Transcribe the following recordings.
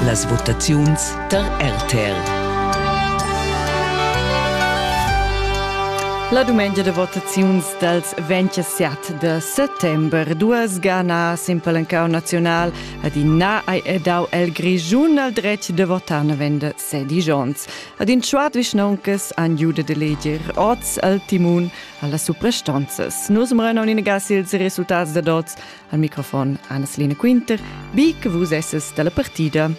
Las votaziuns tar RTL. La dumengia de votaziuns dals 27 de settembre duas ganas in palancau nacional ad in na ai edau el Grischun al dretg de votar navende sedi Jons. Ad in schwat vischnoncas an jude de leger oz al timun alla suprastonzas. Nus mrenon in gas ils resultats de dots Al microfon Anna-Selina Quinter, bi che vus esses dalla partida.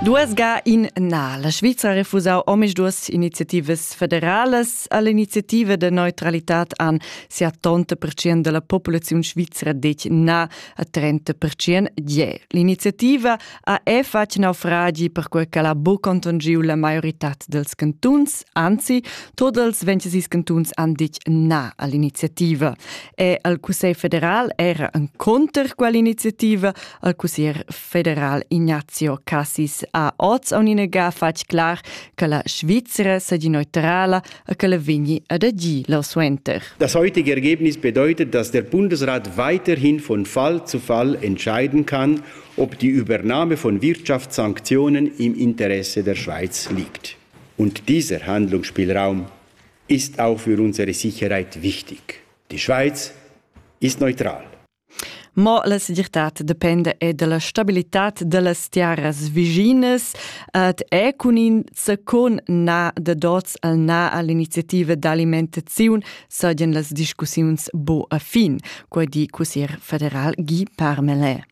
Duas ga in na. La Svizzera ha refusau omis duas iniziativas federalas all'iniziativa de neutralità an 70% della popolazione svizzera dec na a 30% je. L'iniziativa ha è fatg naufragi perquai ch'el ha buc contonschiu la maioritad dels cantuns, anzi, tot els vencesis cantuns han ditg na all'iniziativa. E al Cussegl federal era en conter quell'iniziativa, al Cussier federal Ignazio Cassis ha oz a un'inega fatg clar che la Svizzera sia neutrala e che la vegni ad agir suenter. Das heutige Ergebnis bedeutet, dass der Bundesrat weiterhin von Fall zu Fall entscheiden kann, ob die Übernahme von Wirtschaftssanktionen im Interesse der Schweiz liegt. Und dieser Handlungsspielraum ist auch für unsere Sicherheit wichtig. Die Schweiz ist neutral. Ma la segirtad dependa er della stabilitad dellas tiaras viginas et è cun in secon na de dots al na all'iniziativa d'alimentazione sagen las discussions bo a fin, quai di cussier federal Guy Parmelin.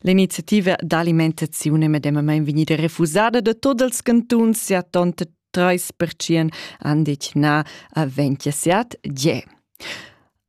L'iniziativa d'alimentaziun è medemamain vegnida refusada da tot els cantuns, sia tonta 30% han detg na a 27 je.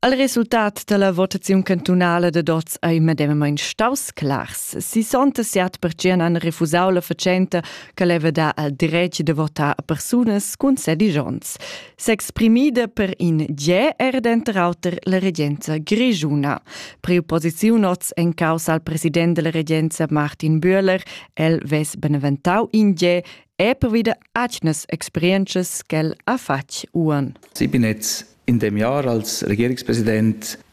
Al resultat dalla votaziun cantunala da dots ei medemamain staus clars. 67% han refusau la fatschenta che leva dar al dretg da votar a persunas cun sedigions. s'exprimida per in ge er denter auter la regenza grischuna. Preopposiziun oz en causa al president della regenza Martin Bühler, el ves beneventau in ge e povida atgnas experientschas ch'el ha fatg uan. Sipinetz in dem Jahr als Regierungspräsident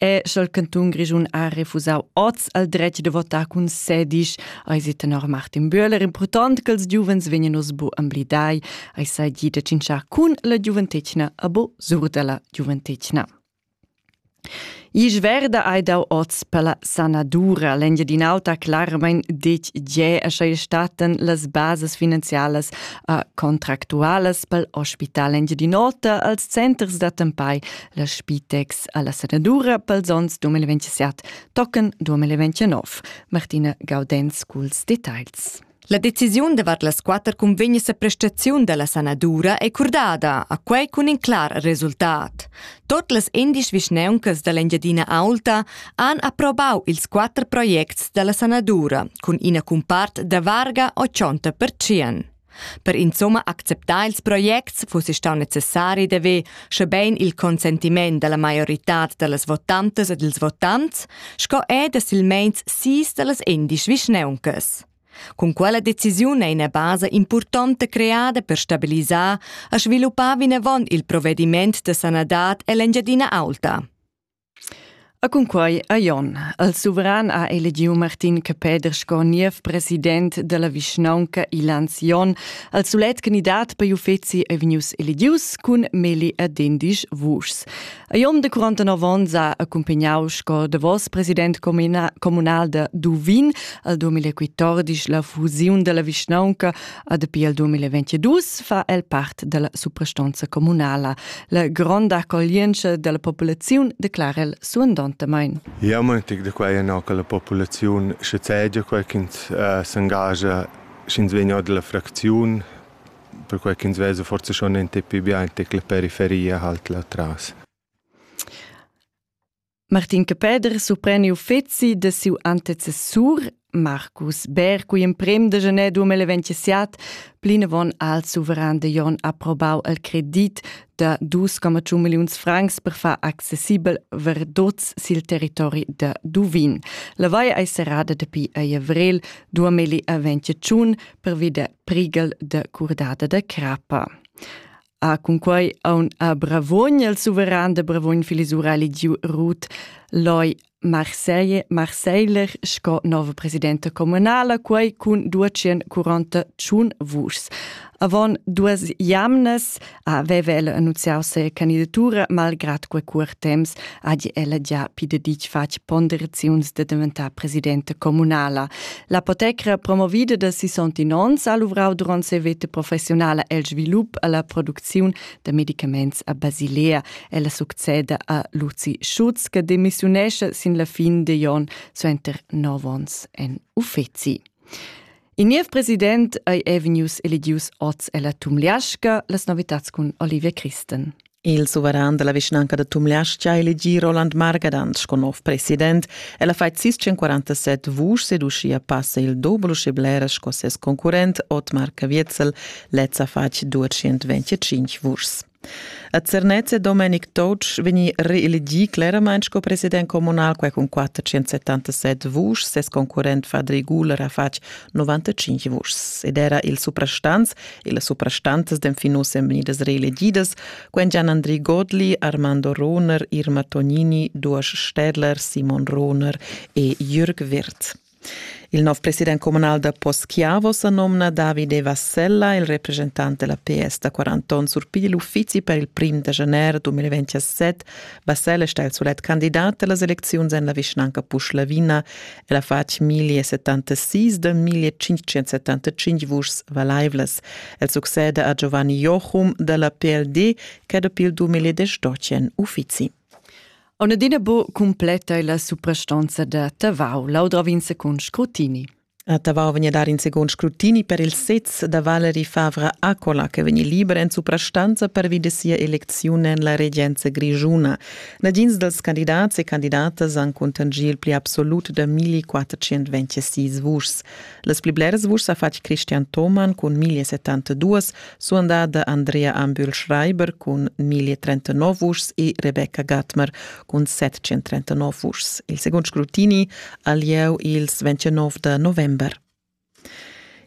E sch'el cantun grischun ha refusau oz al dretg da votar cun sedisch, ei si tenor Martin Böhler impurtont ch'ils giuvens vegnan oz bu emblidai, ei sai di da tschintschar cun la giuventetgna a bo sur dalla giuventetgna. Isch verda hai dau oz per la sanadura l'Engiadin'Alta clarmain detg gie e sch'ei statan las basas finanzialas a contractualas pel Hospital Engiadin'Ota als centers d'attempai La Spitex alla sanadura pels ons 2027 tocan 2029. Martina Gaudenz culs details. La decisiun davart las quatter cunvegnas a prestaziun dalla sanadura è curdada, a quei cun in clar resultat. Tot las indisch vischneuncas dall'Engiadina Aulta han approvau ils quatter projects dalla sanadura cun ina cumpart da varga 80%. Per insumma acceptar ils projects fussi stau necessari d'haver, schebein il consentiment dalla maioritad dallas votantas e dils votants, sco er da silmeins sis dallas endisch vischneuncas. Cun quella decisiun ei ina basa impurtonta creada per stabilisar e sviluppar vinavon il provvediment da sanadad ell'Engiadina Aulta. E cunquai ha Jon, il suveran ha elegiu Martin Capeder sco niev president dalla vischnaunca Ilans Jon, il sulet candidat per uffeci ei vegnius elegius cun Meli e Dendisch Vuschs. A Jon de 49 onns ha accumpagnau sco davos president communal da Duvin al 2014 la fusiun dalla vischnaunca A dapi al 2022 fa el part dalla suprastonza communala. La gronda accoglientscha dalla populaziun declara el suandontamain. Ja, moitig da quai ena che la populaziun sche cegia quai ch'ins uh, s'engagia sch'ins vegna dalla fracziun perquai ch'ins vesa forse schon en tipi biantic la periferia halt là tras. Martin Capeder surpreni uffeci da siu antecessur Marcus Bär cui emprem da janer 2027 plinavon al suveran de Jon approbau el credit da 2,1 milliuns francs per far accessibel verdots sil territori da Duvin. La vaia ei serrada dapi a avrel 2021 per vida prigal de curdada de crappa. ha cunquei aun a Bravogn il suveran de Bravogn filisura eligiu Ruth Loi Marseille, Marseiller sco nova presidenta comunala, quei cun 241 vuschs. Avon duas jamnas aveva ella annunziau se candidatura, malgrad quei cuort temps ha ella già pideditg fatg ponderaziuns de diventar presidenta comunala. L'apotecra promovida da sisontin onns ha luvrau durant ses veta professionala el svilup alla producziun da medicaments a Basilea. Ella succeda a Luzi Schutz che demissiunescha sin la fin de Jon suenter nov onns en uffeci. Il niev president ei Evenius Elidius Oz ella Tumliasca, las novitats cun Olivia Christen. Il suveran da la vischnanca da Tumleastga ha elegì Roland Margadant sco nov president. El ha fatg sis 147 vuschs ed uschia passa il doble uschè blera sco ses concurrent Otmar Caviezel. Lez ha fatg 225 vuschs. A Zernez è Domenic Toc vegni reelegì cleramain sco president communal, quai cun 477 vuschs. Ses concurrent Fadri Guler ha fatg 95 vuschs ed era il suprastants e las suprastantas d'enfin uss èn vegnidas reelegidas, quen Gian Andri Godli, Armando Rohner, Irma Tognini, Duas Städler, Simon Rohner e Jürg Wirth. Il nov president comunal da Poschiavo sa nomna Davide Vassella, il representant della PS da 40 onns surpiglia l'uffizi per il prim da gennaire 2027. Vassella sta il sulet candidat della elezioni en la vischnanca Puschlavina El ha fatg 1076 da 1575 vuschs valaivlas. El succeda a Giovanni Jochum da la PLD che dapi il 2018 uffizi. Onadina bo completa la suprastanza da Tavau, laudra vinse con scrutini. A Tavau vegna dar in second scrutini per il sez da Valery Favre Accola, che vegni liber en suprastanza pervi de sia elezione en la regenza grigiuna. Nagins dals candidats e candidatas han cuntanschì il pli absolut da 1426 vuschs. Las pli bleras vuschs ha fatg Christian Thomann cun 1072, suandada Andrea Ambühl-Schreiber cun 1039 vuschs e Rebecca Gatmer cun 739 vuschs. Il segund scrutini ha lieu ils 29 da november.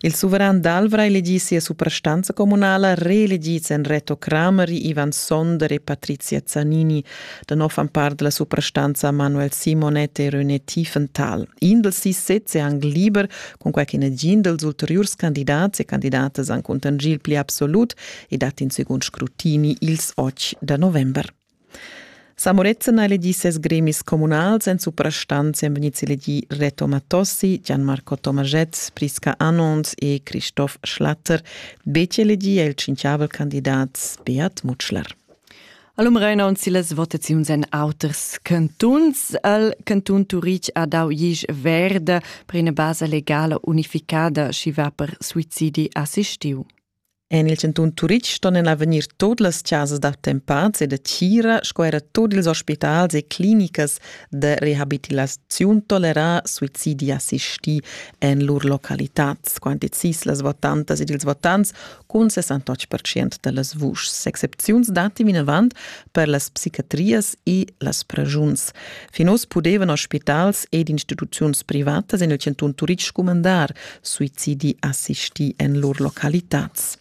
Il suveran d'Alvra ha elegì sia suprastanza communala, reelegids èn Reto Crameri, Ivan Sonder e Patrizia Zanini. Da nov han part da la suprastanza Manuel Simonet e René Tiefenthal. In dals sis sezs è anc liber, cunquai che negin dals ulteriurs candidats e candidatas han cuntanschì il pli absolut e dat in segund scrutini ils otg da november. Sa Morezen ha elegì ses gremis communals, en suprastant èn vegnids elegì Reto Matossi, Gianmarco Tomaschett, Prisca Anons e Christoph Schlatter. Betg elegì è il tschintgavel candidat Beat Mutschler. Allum Reinaun sillas votaziuns en auters cantuns. Il cantun Turitg ha dau isch verde per ina basa legala unificada, schi va per suicidi assistiu. En il chantun Turitg ston en avegnir tut las chasas d'attempads e da tgira sco era tut ils ospitals e clinicas de rehabilitaziun tolerà suicidi assistì en lur localitads, quanti cis las votantas ed ils votants cun 68% da las vuschs. Excepziuns datti vinavant per las psichiatrias e las pragiuns. Fin oz pudevano ospitals ed instituziuns privatas en il chantun Turitg scumandar suicidi assistì en lur localitads.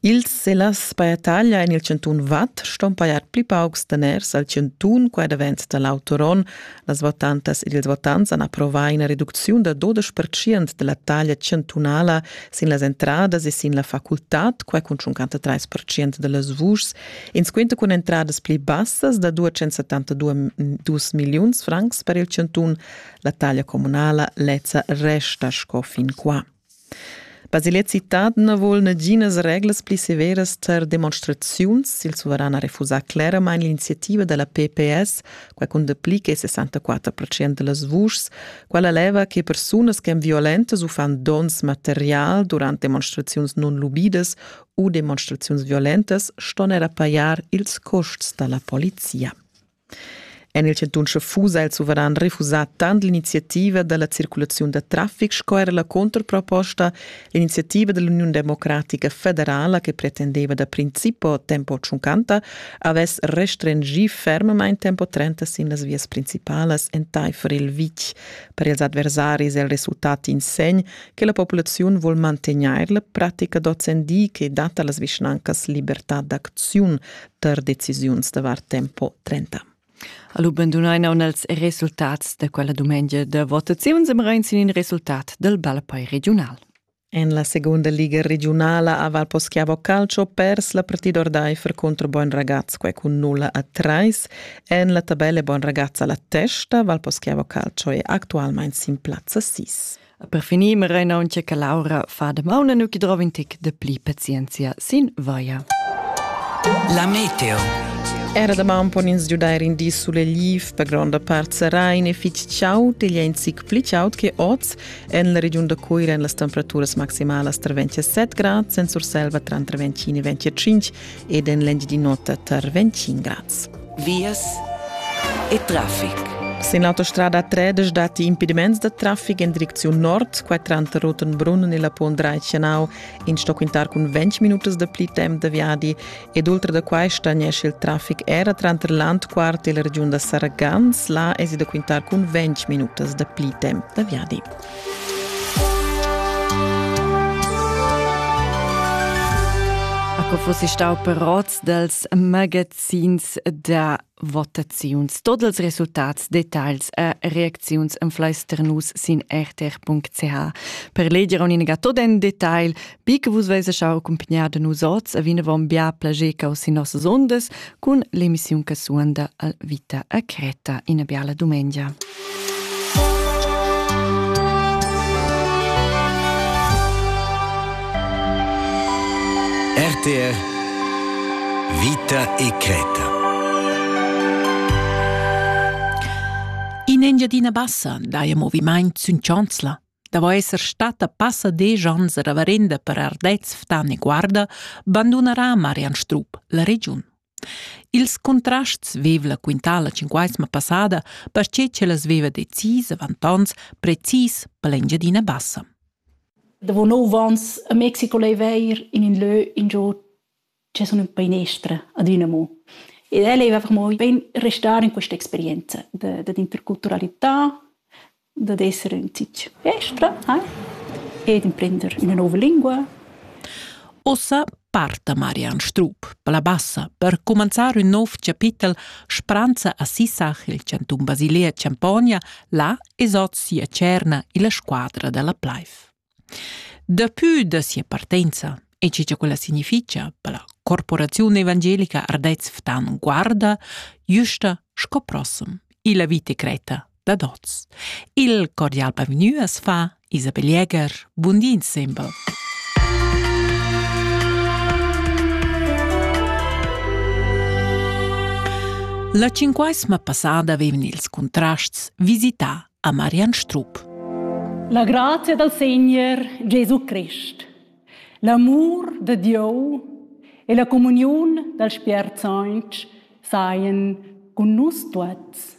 Ils e las paiataglia en il chantun Vad ston pajar pli paucs daners al chantun qua davent da l'autoron. Las votantas ed ils votants han approvà ina reducziun da 12% da la taglia chantunala sin las entradas e sin la facultad, qua cun 53% da las vuschs, ins quinta cun entradas pli bassas da 272 milliuns francs per il chantun. La taglia communala lezza resta sco fin qua. Basilet citad na vol naginas reglas pli severas tar demonstraziuns. Il suveran ha refusà cleramain l'iniziativa da la PPS, quai cun dapli che 64% da las vuschs, quella leva che persunas che èn violentas u fan dons material durant demonstraziuns non lubidas u demonstraziuns violentas ston era pajar ils custs da la polizia. En il chantun Schaffusa ha il suveran refusà tant l'iniziativa da la circulaziun da traffic sco era la controproposta, l'iniziativa da l'Uniun democratica federala che pretendeva da principo tempo 50 avess restringì fermamain tempo 30 sin las vias principalas entaifer il vitg. Per ils adversaris è il resultat in segn che la populaziun vuol mantegnair la pratica d'ozendi che dat a las vischnancas libertà d'acziun, tar decisiuns davart tempo 30. Allo bandunain aun els resultats da quella dumengia da votaziuns am rein sin in resultat del Balpei regional. En la seconda liga regionala a Valposchiavo Calcio pers la partida ordaifer contro Bon Ragazz quai cun 0 a 3. En la tabella Bon Ragazz alla testa Valposchiavo Calcio è attualmente sin plazza 6. Per finir marein auncha che Laura fa damaun nu chi drova in tic da pli pazienzia sin vaia. La meteo. Era damaun pon ins giudair in di sulegliv, per gronda part serain e fitg chaud, igl è in zic pli chaud che oz. En la regiun da Cuira èn las temperaturas maximalas tra 27 grads, en Surselva tra 25 e 25 ed en l'engiadin'ota tar 25 grads. vias e traffic. Sin autostrada 3 datti impediments da traffic en direcziun nord, qua tranter Rotenbrunn e la Pont Reichenau. In sto quintar cun 20 minutas da pli temp da viadi ed oltre da quai stagnesce il traffic era tranter Landquart e la regiun da Saragans. Là è da quintar cun 20 minutas da pli temp da viadi. Ecco fossi stau per rots dels magazzi sins da votaziuns. Tot els resultats, details e reacziuns enfleister nus sin rtr.ch. Per leger un'inega tot en detail, bi che vus veis schau accompagnar de nus oz e vinavon bia plager cau sin nossas ondas cun l'emissiun che suonda al Vita a Creta. Ina biala dumengia. RTR Vita e creta. In Engiadina Bassa dai moviment sün Chanzla. Davo esser stata passa desch ans a Ravarenda per Ardez, Ftan e Guarda, bandunarà Marian Strup la regiun. Ils contrasts vev'la quintà la tschinquaisma passada, perche ch'ella veva decis avant ons precis per l'Engiadina Bassa. Davo nov ans a Mexico laiva eir in ün lö ingio che sun ün painestra ad üna mo. Ed el laiva per moi bain restar in questa experienza da d'interculturalità, dad esser ün tich festra ai ed imprender üna nouva lingua. Uossa parta Marian Strup per la bassa per cumanzar ün nouv chapitel Spranza a Sissach il chantun Basilia Champogna, là es hoz sia tscherna illa squadra da la Pleif. Dapü da sia partenza e che cha quella significha per la corporaziun evangelica Ardez Ftan guarda güsta sco prossum illa vita cretta dad hoz. Il cordial bavgnü as fa Isabel Jäger. Bun di insembel. La cinquesma passada vevn ils contrasts visità a Marian Strupp. La grazia dal Segner Gesù Christ, l'amur de Dieu e la comuniun dal Spiert Sanch saien cun nus tuots.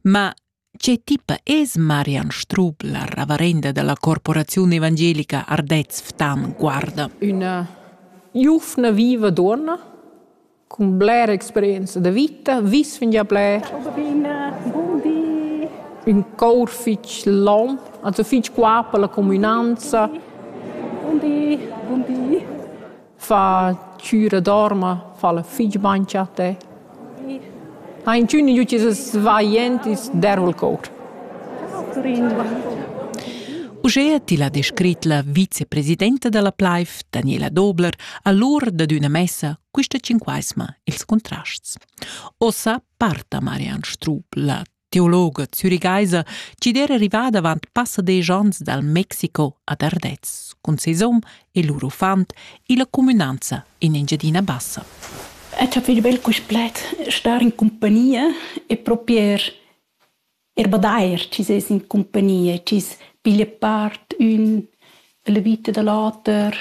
Ma che tipa es Marian Strupp, la ravarenda della corporazione evangelica Ardez Ftan, guarda? Una giuvna viva donna Cun blera experienza da vita vis fingià bler. Buon di. Ün cour fich lom, also fich qua per la cumünanza. Buon di. Buon di. Fa chüra dorma, fa'la fich bain cha te. Ha inchün in giüti svaglientis derva'l cour. Ciao Turin. Uschea ti l'ha descrit la vicepresidenta da la Plaif, Daniela Dobler, allura dad üna messa quista cinquaisma ils contrasts. Ossa parta Marian Strup, la teologa zürigaisa, chi d'era rivada avant passa desch ans dal Mexico ad Ardez cun ses hom e lur uffant illa cumünanza in Engiadina Bassa. Ed ha fich bel quist pled, star in compagnia e propier er badair chi es in cumpagnia, chi's piglia part ün la vita da l'oter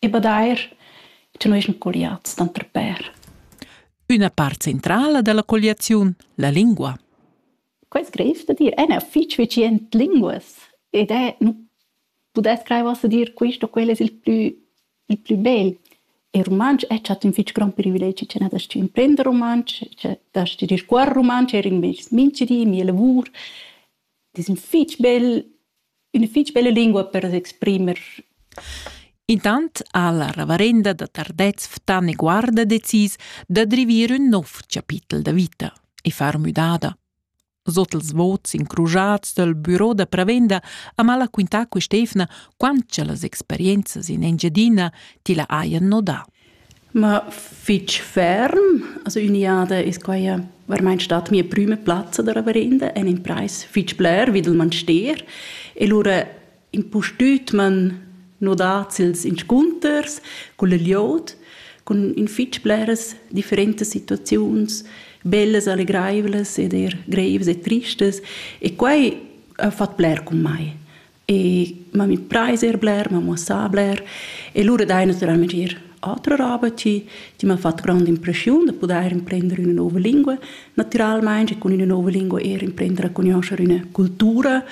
e badair cha no eschan colliats tanter pêr. Üna part centrala da la colliaziun, la lingua. Quai es greiv da dir, ena fich vecient linguas ed è, nu pudess crair uossa dir quist o quel es il plü il plü bel è rumantsch e chat ün fich grond privilegi che na dast tü imprender rumantsch, che dast ti discuorre rumantsch eir in meis minchdi, mia lavur. Ed es ün fich bel, üna fich bella lingua per s'exprimer. Intant ha la reverenda da Tardez Ftan e Guarda decis da drivir ün nouv chapitel da vita e far müdada. Sot els vots incrujats dal büro da prevenda ha mala quintà quest'eivna quant cha las experienzas in Engiadina ti la hajan nodà. Ma fitg ferm, also Uniade ist quai vermeint stat mia prüma plazza da reverenda en in preis fitg bler, wie man steher. E lura impustüt man nodats ils inscunters culla glieud cun in fich bleras differentas situaziuns, bellas, allegraivlas ed eir greivas e tristas e quai ha fat bler cun mai. E m'ha imprais eir bler, m'ha muossà bler e lura dai natüralment eir atra roba chi chi m'ha fat grand'impreschiun da pudair imprender üna nouva lingua, natüralmaing e cun üna nouva lingua eir imprender a cugnuoscher üna cultura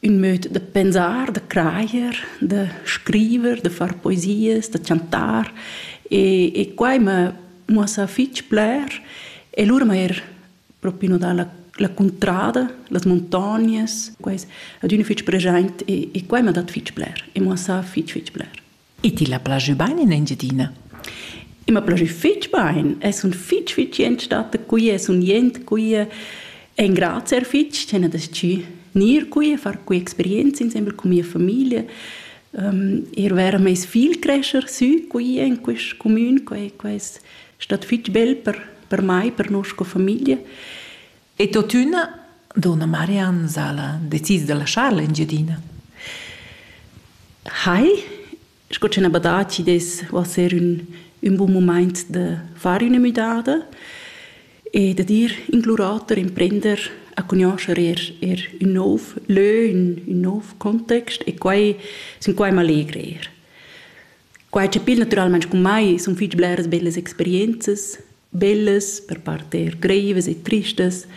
ün möd da pensar, da crajer, da scriver, da far poesias, da chantar e, e quai m'ha muossà fich bler e lura m'ha eir propi nodà la, la cuntrada, las muntognas, quais adüna fich preschaint e, e quai m'ha dat fich bler e muossà fich fich bler. E ti la plajü bain in Engiadina? I ma plajü fich bain. E sun fich fich jent stata qui e sun jent qui e engrazier fich ch'el ha deschü gnir qui e far qui experienza insembel cun mia famiglia. eir vaira meis figl crescher sü qui in quist cumün. Quai quai es stat fich bel per per mai, per nossa famiglia. E tuottüna, donna Marianne Sala decis da laschar l'Engiadina. Hai, sco ch'ün ha badà chi dess uossar ün, ün bun mumaint da far üna müdada e da dir in glurator, in prender a cugnuoscher eir, eir ün nouv lö, ün, ün nouv context e quai sun quai m'allegr eir. Quai chapir natüralmaing cun mai sun fich bleras bellas experienzas, bellas, per part eir greivas e tristas,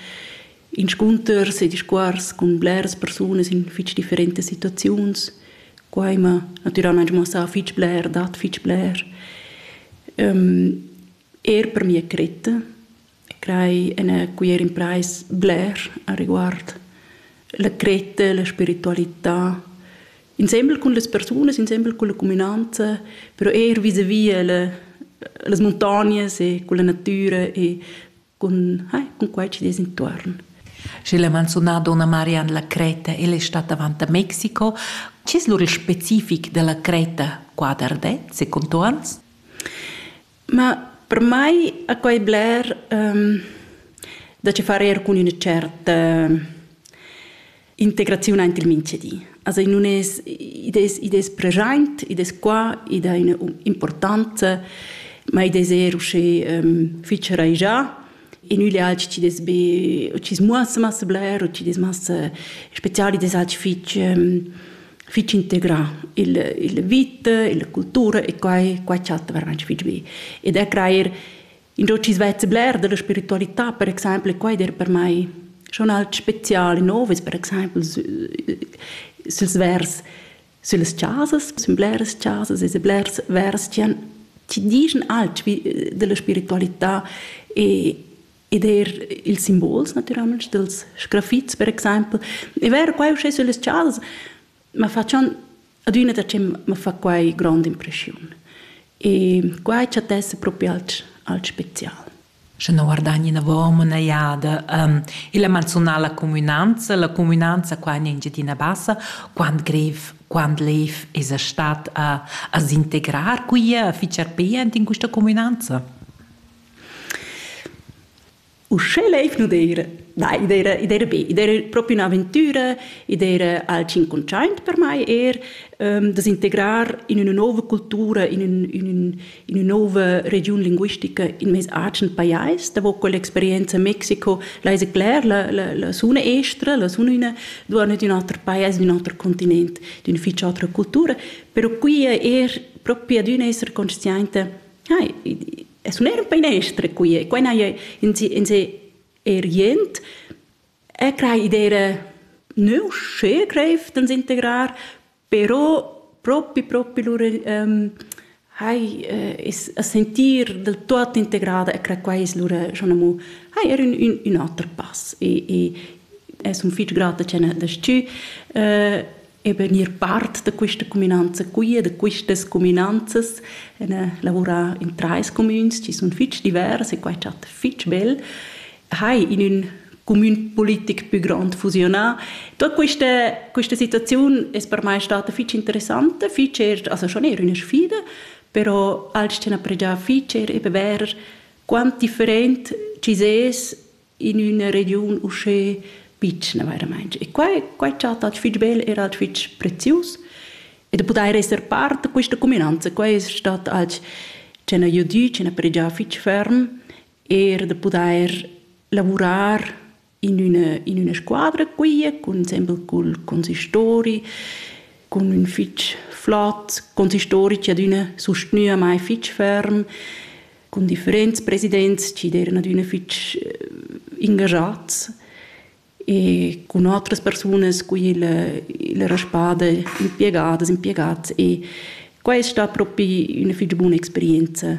inscunters e discuors cun bleras persunas in fich differentas situaziuns. Quai m'ha natüralmaing muossà fich bler, dat fich bler. Eir per mia cretta e crei ina cuier impreis bler areguard la cretta, la spiritualità, insembel cun las persunas, insembel cun la cuminanza, però eir vis-à-vis a la, las muntognas e cun la natüra e cun, ai, cun quai chi dess intuorn. Schi l'ha manzunà donna Marian la Creta, ella è stata avant a Mexico. Chi es lur il specific della Creta qua d'Ardez, secondo ans? Ma per mai a quai bler da che far eir cun üna tscherta integraziun aint il minchedi. Also i nun es id es id es preschaint, id es qua, id ha üna importanza, ma id es eir uschè fich raischà in üglial chi dess be o chi's muossa massa bler o chi's dess massa special, id es alch fich fich integrà il il vita, la cultura e quai quai chatta veramaing fich be. Ed er crajer ingio chi's vezza bler da la spiritualità per exaimpel e quai der per mai schon alch spezial e nov es per exaimpel sü süls vers Süllas chasas sun bleras chasas e blers vers chi han chi dischan alch vi della spiritualità e ed eir ils simbols natüralmaing dels sgrafits per exaimpel. E vero quai uschè süllas chasas ma fa schon adüna da che ma fa quai grond'impreschiun. E quai chattessa propi alch alch special. sche non guardagni inavon üna jada illa manzunala cumünanza. La cumünanza qua in Engiadina Bassa quant grev, quant lev esa stat a s'integrar quia, a fich arpè aint in quista cumünanza. Uschè leiv nu d'eira na i d'eira i d'eira be, i d'eira propi ün'aventüra, i d'eira al tschincontschaint per mai eir da s'integrar in üna nouva cultura, in ün in ün in nova regiun linguistica in mes agen pajais. Da con l'experienza Mexiko l'hai cler la, la, la suna estra, la suna una duana di un altro paese, di un altro continente, di una ficia altra cultura, però qui è er proprio di un essere consciente hai es un er un painestre qui e quai n'hai in se in se er jent e crai idea neu schön greif dann integrar Però propi propi lur ehm hai es a sentir del tuot integrada e cra quai es lura schon amo hai er ün ün ün oter pass e e e sun fich grata cha n'ha das-chü eben ir part da quista cuminanza qui e da quistas cuminanzas e n'ha lavurà in trais cumüns chi sun fich divers e quai chat fich bel hai in ün cumün politic pü grond fusionà. Tot questa, questa situaziun es per mai stata fich interessanta, fich er, also schon eher üna sfida, però als c'han appregià fich er eben ver quant different ci ses in üna regiun uschè pitschna veramente. E qua, qua è stato fitch bel, era fitch prezius. E da poter essere parte di questa cuminanza, qua è stato als c'hanno aiutà, c'hanno pregià fitch ferm. er da pudair lavurar in üna, in üna squadra quia cun sembel cul consistori cun ün fich flot consistori chi adüna sustgnüa mai fich ferm cun differents presidents chi d'eran adüna fich ingajats e cun otras persunas cu illa, illa raspada impiegadas, impiegats e quai es sta propi üna fich buna experienza.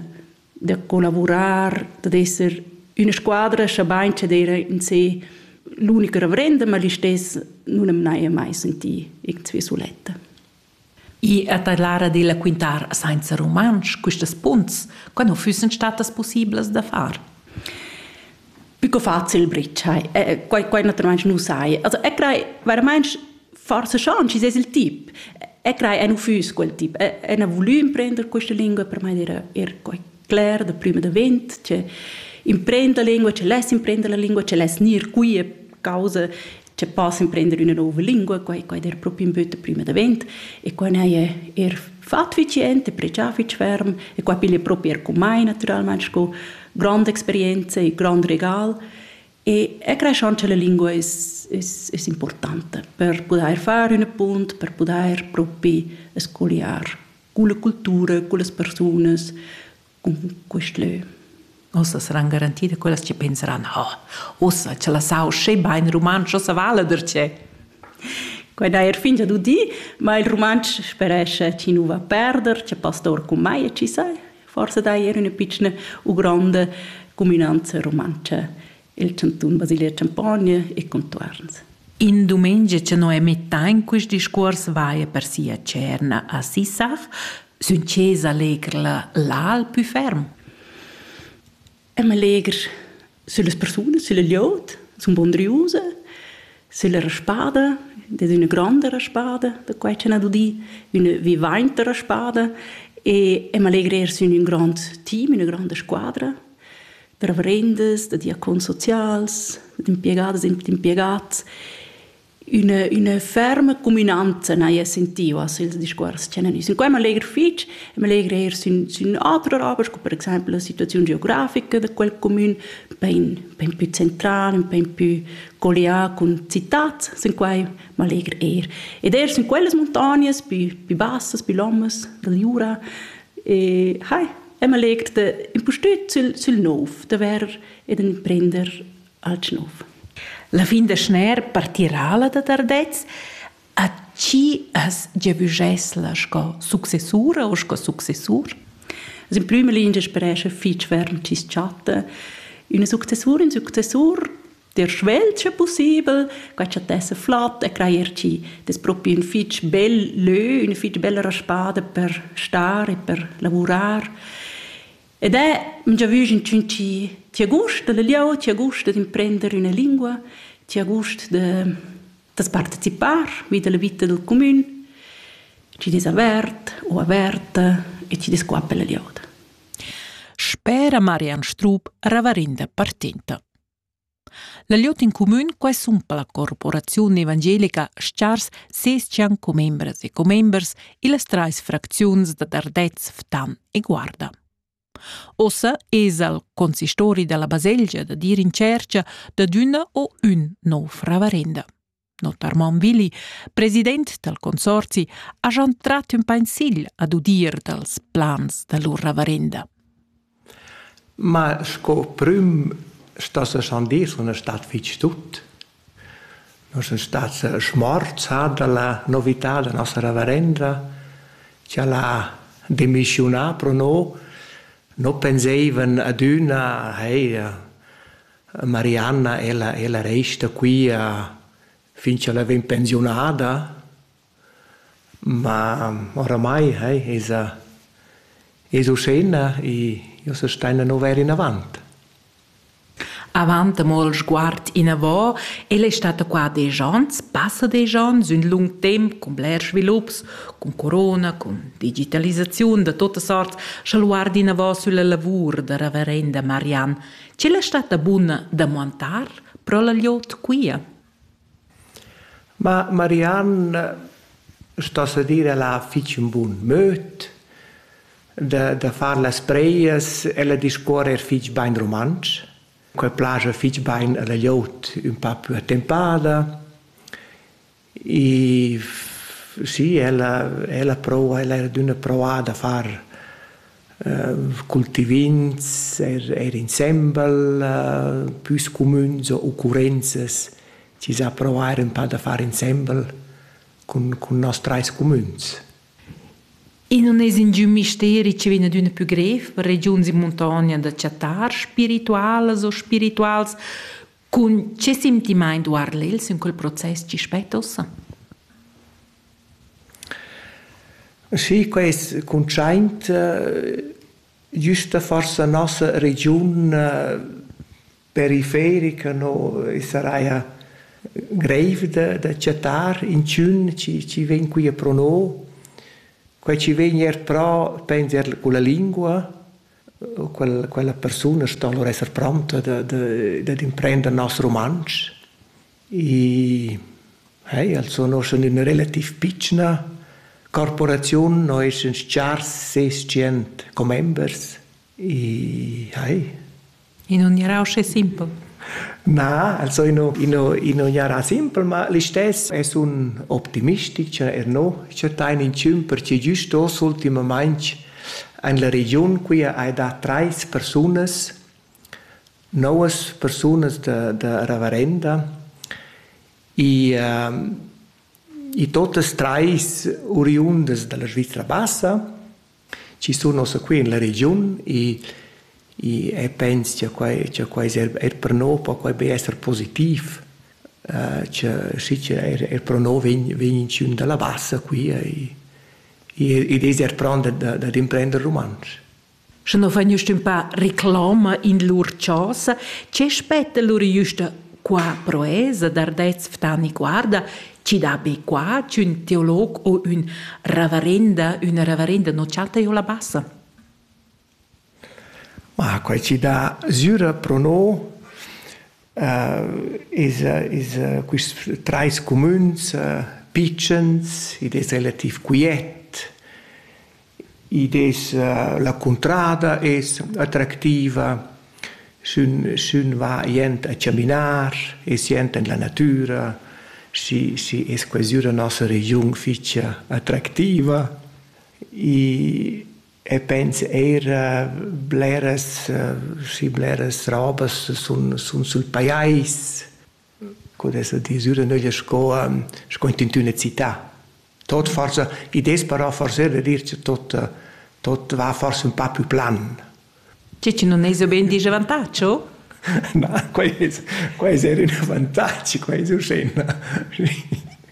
da collavurar, dad esser üna squadra, schabain che d'eira in se l'unica reverenda, ma listess nun am n'haja mai sentì irgendwie suletta. I è ta l'ara della quintar sainza rumantsch questas punts, quando füssen statas possiblas da far? Pü co facil bretschai. Eh, quai, quai naturalmaing nu sai. Also eu craj veramaing forsa schon chi es il tip. Eu craj eu nu füss quel tip. Eu n'ha vulü imprender questa lingua, per mai era er quai cler da prüma davent, che imprender la lingua, che less imprender la lingua, che less gnir qui a causa che pass emprender üna nouva lingua, quai quai der propi ün böt prima davent e quai n'haja er fat fich jent e pregià fich ferm e quai piglia propi er cun mai natüralmaing sco granda experienza e grand regal e e cresch anche la lingua es es es importanta per pudair far ün appunt, per pudair propi scogliar culla cultura, cullas persunas, quist lö. Uossa saran garanti da quellas chi penseran, oh, uossa cha la sau sche bain rumantsch, uossa vala darcheu. Quai da er fingia du di, ma il rumantsch sperescha chi nu va perder, cha pastor cum mai e chi sai, forsa da er üna pitschna u gronda cuminanza rumantscha il cantun Basilia Champogna e contuorns. In dumengia che Noemi Tain quist discuors vaia per sia cerna a Sissach, sün chesa legr la l'al pü ferm. Am legr sülle persune, sülle liot, sun bondriuse, sülle raspada, das ist eine grande Raspada, da quai c'è una dudi, una vivainta raspada, e am allegra er sün un grand team, una grande squadra, reverendas, da diacons socials, d'impiegadas e d'impiegads. Üna, üna ferma cuminanza n'haja sentiu a ils discuors che han nus. Quai m'allegra fitg, m'allegra eir sün, sün autras obras, sco per exempel la situaziun geografica da quel comün, bain, bain più central, bain più collià cun citats, sin quai m'allegra eir. Ed eir sün quellas muntognas più, più bassas, più lomas da Jura, e hai, e ma legt da impustüt sül, sül nouv, da vair ed imprender alch nouv. La fin da schner partirà la da Tardez, a chi as giavüschess la sco successura o sco successur? Also in prüma lingia sperescha fich ferm chi's chatta üna successura, ün successur der svelt sche possibel, quai chattesse flott e crajer ci. Das propi un fitch bel lö, una fitch bella spada per star e per lavurar. Ed è, già vügin tschun ci, ti ha gust da la lieu, ti ha gust da d'imprender üna lingua, ti ha gust da, das partecipar vi da la vita del comün, ci des avert o averta e ci des qua per la lieuda. Spera Marian Strup ravarinda partinta. La glieud in cumün quesumpa la corporaziun evangelica Stars ses-chan commembras e commembers illas trais fracziuns da Dardez, Ftan e Guarda. Ossa esa il consistori dalla baselgia da dir in tschercha dad üna o ün nouv ravarenda. Notarmon Willi, president dal consorzi, hajan trat ün pensil ad udir dals plans da lur ravarenda. Ma sco prüm sta se schon dir, sun stat fich tut. Non sun stat schmorzà dalla novità da nossa ravarenda, che l'ha demischiunà pro no, no penseivan ad üna, hey, Marianna, ella, ella resta qui a, fin ch'ella vegn pensiunada, ma oramai hey, esa, es uschena e io se staina no vair inavant. Avant amol sguard inavo, el è stata qua desch ans, passa desch ans, ün lung temp cun blers svilups, cun corona, cun digitalisaziun da totas arts, scha luard inavo sülla lavur da reverenda Marianne Chi l'ha statta buna da muantar pro la gliot quia? Ma Marianne sto se dir ella ha fich ün bun möd da da far las preias. Ella discuorra eir fich bain rumantsch. Quai plaja fich bain a la gliot ün pa pü attempada. E sì, ella, ella prova, ella era d'üna provà da far uh, cultivins er, er insembel, uh, püs cumüns o occurrenzas, chi s'ha provà er ün pa da far insembel cun, cun nos trais cumüns. E non es ingün misteri che vegna d'üna pü grev per regiuns in muntogna da chattar spiritualas o spirituals Cun che sentimaint guarda el sün quel process chi spetta ussa? Sì, quest cuntschaint güsta forsa nossa regiun periferica no e saraja greiv da da chattar inchün chi chi vegn quia pro no. Quai chi vegn eir pro penser culla lingua, quella, quella persuna sto allora esser pronta da, da, dad imprender nos rumantsch. E hey, also noi sun in relativ pitschna corporaziun, noi sun chars ses cient commembers. E hey, In un era uscì simpel. Na, also ino, ino, ino jarà simpel, ma l'istes es un optimistic, cioè er no, cioè tain in 5 perché giust dos ultimamaing en la regiun qui hai da trais persunas, novas persunas da, da reverenda, e uh, e totas trais oriundas dalla Svizzera bassa chi sun ossa qui in la regiun e e e pens cha quai cha quai es eir eir per no po quai be esser positiv cha schi cha eir eir pro no vegn vegn inchün da la Bassa qui ed es eir pront da da d'imprender rumantsch. Sche no vegn üstün pa reclama in lur chosa, che spetta lur jüsta Qua proesa d'ardets Ftani guarda, chi da be qua ch'ün teolog o ün ravarenda, üna ravarenda non chatta io la bassa. Ma quai ci dà süra pro no uh, is, is uh, quist trais cumüns uh, pitschens, id es relativ quiet, Id es la cuntrada es attractiva, sün sün va jent a chaminar e sient in la natüra, schi schi es quezü la nossa regiun fich attractiva i e pens eir bleras schi bleras robas sun sun sül pajais. co dess dir süra nöglia sco ehm sco intüna città. Tot forsa id es però forsa da dir cha tot tot va forsa ün pa pü plan. Che chi nun esa be ün disavantatg, o? Na, quai es quai es eir ün avantagi, quai es urschè.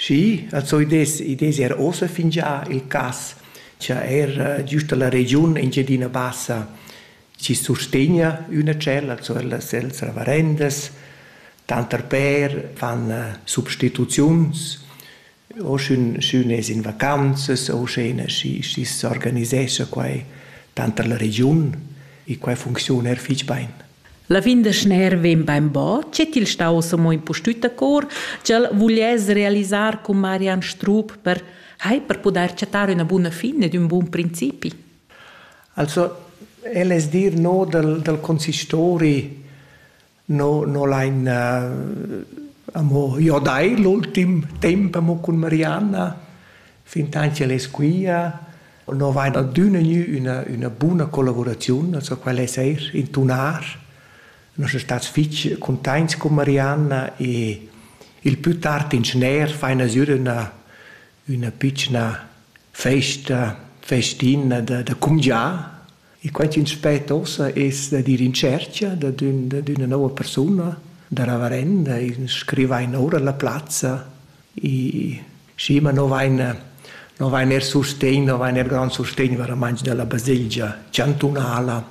Schi, als oidess id es eir uossa fingià il cas cha eir giüst da la regiun Engiadina Bassa chi sustegna üna cell, also las cells ravarendas, tanter pêr fan substituziuns, o sch'ün sch'ün es in vacanzas o sch'üna schi schi s'organisescha quai tanter la regiun e quai funcziun eir fich bain. La fin da schner vegn bainbò dschet il stau samo impustüt a cor ch'el vuliess realisar cun Marian Strup per hai per pudair chattar üna buna fin ed ün bun principi. Also el es dir no dal dal consistori no no lain amo jo dai l'ultim temp amo cun Marianna Fin tant ch'el es quia nu vain adüna gnü üna üna buna collavuraziun, also quel es eir in tunar. Nus sun stats fich cuntaints cun Marianna e il pü tard in schner faina sür üna üna pitschna festa festina da da cumgià E quai ch'ins spetta ussa es dad ir in tschercha dad ün dad üna nouva persuna, da reverenda, in scrivain oura la plazza. I schi, ma no vain no vain eir sustegn, no vain eir grand sustegn veramaing da la baselgia chantunala.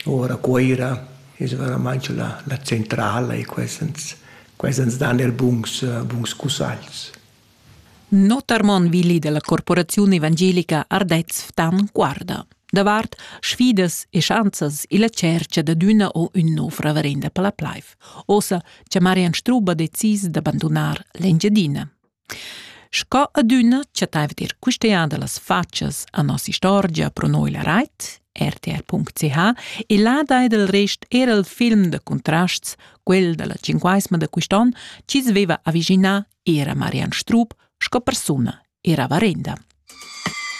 Oura a Cuoira es veramaing la la centrala e quai ans quai ans dan eir buns buns cussagls. Notar mon Willi della corporaziun evangelica Ardez Ftan guarda davart sfidas e schanzas illa tschercha dad üna o ün nouv reverenda per la plaiv. Ossa cha Marian Struba ha decis d'abandonar l'Engiadina. Sco adüna chattaiva dir quistea da las fatschas a nos istorgia pro noi la rait rtr.ch e là dai del rest era il film de contrasts, quel della cinquaesma de quist'on, chi sveva aviginar era Marian Strub sco persuna era varenda.